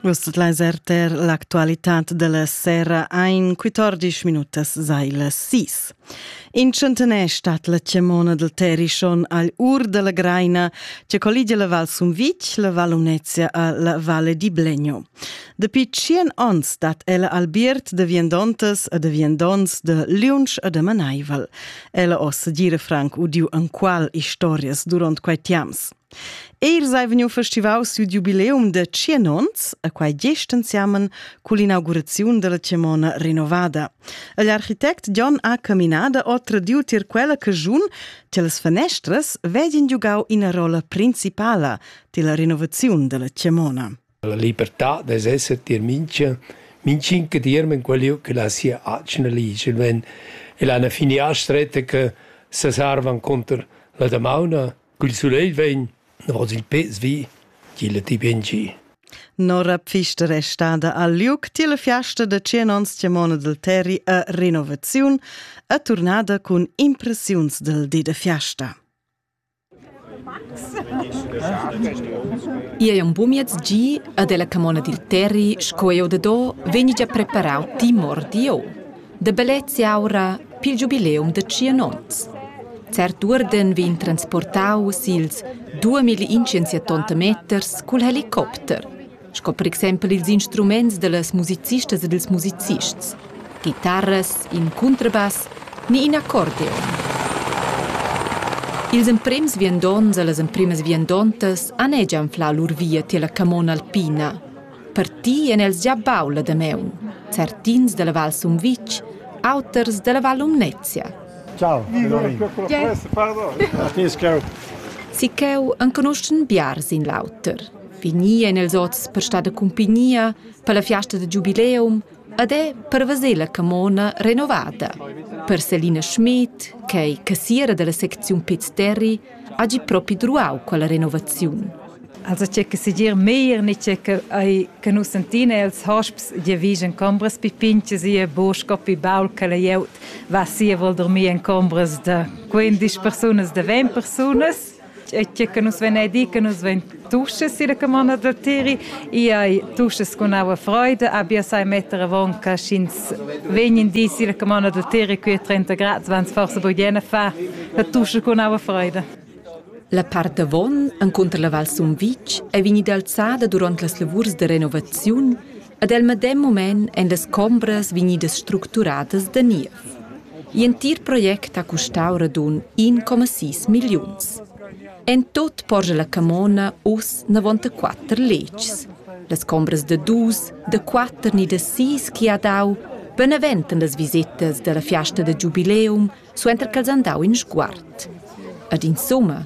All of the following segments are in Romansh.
Vus tot leis erter l'actualitat della sera ein 14 minutas seile sis. In centenè stat la chiamona del Terishon al ur della Greina, che colligia la Val Sumvitg, la Val Unezia a la Valle di Blegno. Dapi tschien ons stat ella albiert de viandontas e de viandons de liunsch e de manaival. Ella ossa dire franc udiu anqual historias durant quei tiams. Els ei vegniu festivaus siu giubileum de tschien onns e quei gest ensemen cun l'inauguraziun della Tiemona renovada. Igl architect Jon ha caminada o tradiu tier quella caschun che las fenestras vedien giugau ina rolla principala della renovaziun della Tiemona. La libertà dess esser tier mincha mincin che dierm en quel liug che la sia atgna ligia ven e la alla finià stretta che sesarvan cunter la damauna. Cul sulegl vegn davos il pez vi, tg'illa ti bien gi. Nora Pfister è stada al liug tiela fiasta da 100 ons tiamona del Terri a renovaziun a turnada cun impressiuns del di da fiasta. Igl ei aunc bumiez gi ed ella camona dil Terri sco ei odado vegni gia preparau timor di o, da bellezia aura pil giubileum da tschien onns. Cert uorden vegn transportau sils duamilli inscensiatonta meters cul helicopter. sco per exempel ils instruments dallas musicistas e dils musicists, chitarras, in cuntrabass ni in accordeon. Ils emprems viandonts e las empremas viandontas han anfla lur via tier la camona alpina. Parti en els gia bau la Dameun, certins dalla Val Sumvitg, auters dalla Val Lumnezia. Ciao, Sicheu enconuschen biars in l'auter. Finì èn els oz per star da cumpignia per la fiasta da giubileum ed è per veser la camona renovada. Per Selina Schmidt, ch'è cassiera dalla secziun Piz Terri, ha gi propi druau quella renovaziun. Also c'è che segir meir ni c'è che ai che nus sentina els hosps je vigen combras pi pinches e bosch coppi baul che la jeut va sia vol dormir en combras da 15 persunas da 20 persunas e tge che nus vein di che nus vein tuschas silla camona da Tiri, i hai tuschas con aua freida, abia sai metter avon che sch'ins vegn di silla camona da Tiri qui a 30 grad, vans forse bugen a far la tuscha con aua freida. La part avon, encunter la Val Sumvitg, è vegnida alzada durant las lavurs da renovaziun Ad el medem mument èn las chombras vegnidas structuradas da niev. L'entir project ha custau radund 1,6 milliuns. En tot porscha la camona uss navonta letgs. Las chombras da dus, da quatter ni da sis chi ha dau beneventan las visitas dalla fiasta da giubileum suenter ch'els han dau in sguard. Ad insumma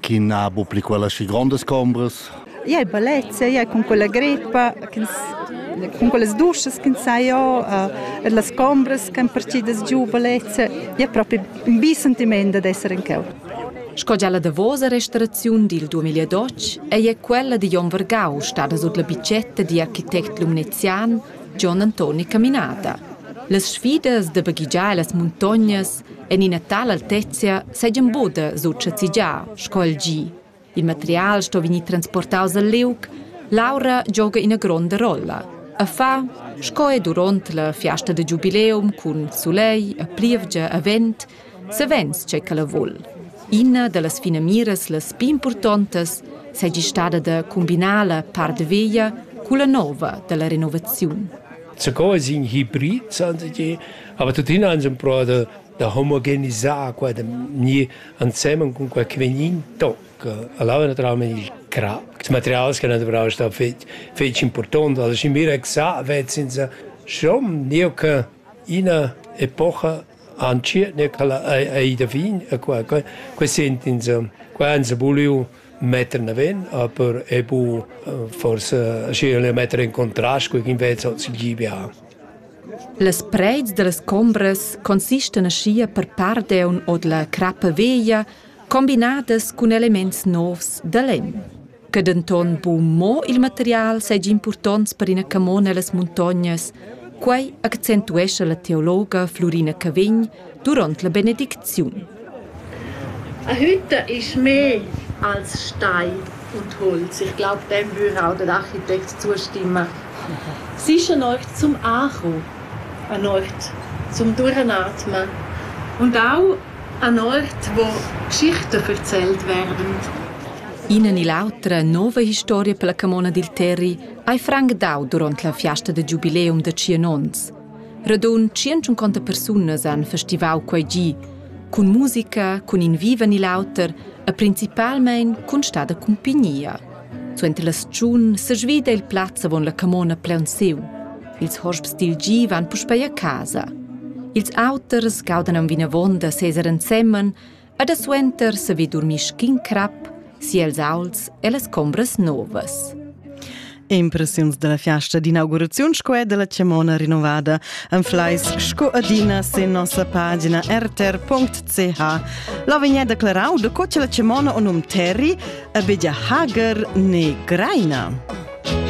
chi n'ha bu pli quella schi grondas chombras. Ia è bellezia, ia è con quella greppa, con quelles duschas ch'ins sa jo, e las combras ch'han partidas giu bellezia, ia è propi un bi sentiment dad esser in cheu. Sco gia la davosa restauraziun dil 2012 ei è quella di Jon Vergau stada sut la bitgetta di architect lumnezian John Antoni Caminata. Las sfidas da baghigiar las muntognas En ina tala altezia seigien buca sut schazigiar sco il gi. Il material sto vegnir transportaus al liug, l'aura gioga ina gronda rolla. A fa, sco è duront la fiasta de giubileum cun sulegl e plievgia e vent, savens c'è che vul. Ina dallas finamiras las più importantes seigi stada de combinar la part veglia culla nova della renovaziun. Zugò sin Hybrid, sagen sie, Aber tuttina han sie provato da, da omogenisar qua da ni ansemmen con quel che veniva in toc. Allora naturalmente il crap, il materiale che non dovevano stare feci, feci importante, also ich mir gesagt, sind sie schon nie che una epoca ancora ne che ai da fin e qua qua qua sentin sie qua han sie voulu metter naven, aber ebu forse schier le metter in contrast con invece hoz il GBA. Las preits dallas combras consistan aschia per part eun od la crappa veglia combinadas cun elements novs da lenn. Che denton buc mo il material seigi impurtonts per ina camona las muntognas, quei accentuescha la teologa Flurina Cavegn, duront la benedicziun. A hütta ist mehr als Stein und Holz. Ich glaube, dem würde auch der Architekt zustimmen. Sicher an euch zum Ankommen, an euch zum Durchatmen und auch an Ort, wo Geschichten erzählt werden. Ihnen in l'autra nova historia per la camona dil Terri hai franc dau durant la fiasta de giubileum de tschien onns. Radund tschient persunas han festivau quei gi, cun musica, cun in viva ni l'auter e principalmein cun stada cumpignia. Suenter la stagiun sesvida il plaz avon la camona plaunsiu. Ils hosps dil gi van puspei a casa. Ils auters gaudan aunc vinavon da seser ensemen Ed suenter saver durmir sc'in crap si els aults e las combras novas. Impressiuns dalla fiasta d'inauguraziun sco è dalla Chamona rinnovada anfleis sco adina sin nossa pagina rtr.ch. La vegnia declarau da co che la Chamona on um Terry a bedia Hager ne Greina.